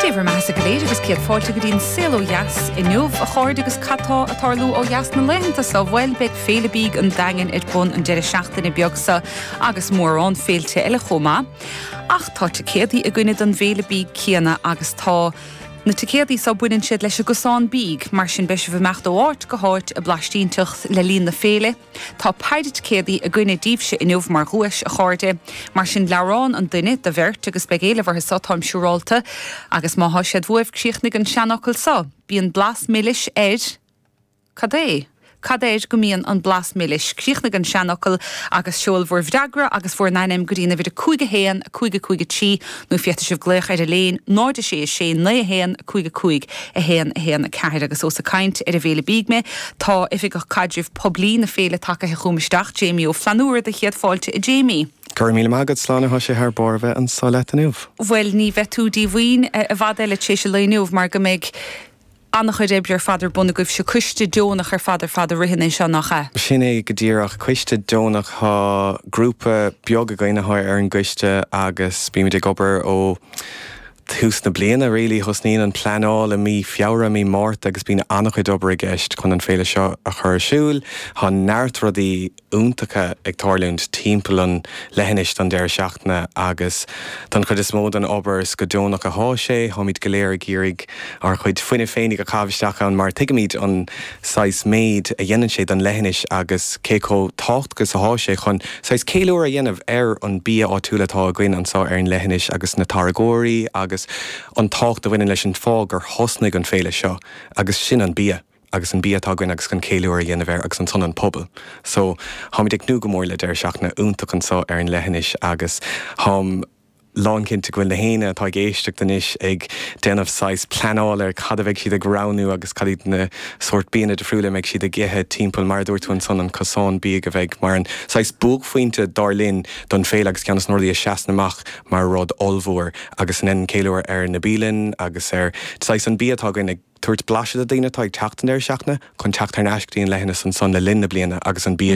Dé bhur maitheasa go léir agus céad fáilte go dtí an Saol ó Dheas inniu, a chairde agus cad tá ag tarlú ó dheas na laethanta so? Bhuel, beidh Féile Bídh an Daingin ar bun an deireadh seachtaine beag so agus mórán féilte eile chomh maith. Ach tá ticéadaí againne don bhFéile Bídh céanna agus tá Na ticéadaí so baineann siad leis an gcosán bídh, mar sin beidh sibh ag imeacht ó áit go háit ag blaistínteacht le linn na féile, Tá péire ticéadaí againne daoibhse inniu mar dhuais, a chairde. Mar sin, leabhrán an duine, do bheirt, agus beidh éileamh orthu seo, táim siúrálta. Agus má tá siad uaibh, críochnaigh an seanfhocal seo, Bíonn blas milis ar. Cad é? Cad air go mbíonn an blas milis? Críochnaigh an seanfhocal agus seol bhur bhfreagra agus bhur n-ainm go dtí an uimhir 5 1 5 5 3. Nó féadfaidh sibh glaoch ar Eiléin 0 6 6 9 1 5 5 1 1 4 agus ós ag caint ar an bhféile bídh mé tá Oifigeach Caidrimh Poiblí na féile tagaithe chugam isteach, Jamie Ó Flannúra Dé chéad fáilte a Jamie. Go raibh míle maith agat, a Shláine tá sé thar barr a bheith anso leat inniu. Bhuel ní bheidh tú díomhaoin i bhfad eile tar éis an lae inniu mar go mbeidh. An-chuid oibre ar fad ar bun agaibhse. Coiste deonach ar fad ar fad a ritheann é seo, nach ea? Sin é go díreach, coiste deonach. Tá grúpa beag againn atá ar an gcoiste agus bímid ag obair ó thús na bliana really. Thosnaíonn an pleanáil i mí Feabhra, mí Márta agus bíonn an-chuid obair i gceist chun an féile seo a chur ar siúil. Tá neart rudaí. iontacha ag tarlúint timpeall an leithinis don deireadh seachtaine agus don chuid is mó den obair is go deonach atá sé. Táimid go léir ag iarraidh ár chuid fuinnimh féinigh a chaitheamh isteach ann mar tuigimid an saghas méid a dhéanann sé don leithinis agus cé chomh tábhachtach is atá sé chun saghas ceiliúradh a dhéanamh ar an bia áitiúil atá againn anso ar an leithinis agus na táirgeoirí agus an tábhacht a bhaineann leis an fáth gur thosnaigh an féile seo agus sin an bia. agus an bia atá againn agus chun ceiliúradh a dhéanamh air agus ar son an pobal so táimid ag tnúth go mór le deireadh seachtaine iontach anso ar an leithinis agus táim lán cinnte go bhfuil nach éinne atá ag éisteacht anois ag déanamh saghas pleanáil ar cad a bheidh siad ag roghnú agus cad iad na sórt bianna difriúla a mbeidh siad ag ithe timpeall mar a dúirt tú ansan an cosán bídh a bheidh mar an saghas buaicphointe dar linn don féile agus ceann des na rudaí a seasann amach mar rud ollmhór agus a dheineann ceiliúradh ar na bialanna agus ar saghas an bia atá againn ag Tabhairt blaiseadh do daoine atá ag teacht an deireadh seachtaine chun teacht thar n-ais go dtí an leithinis ansan le linn na bliana agus an bia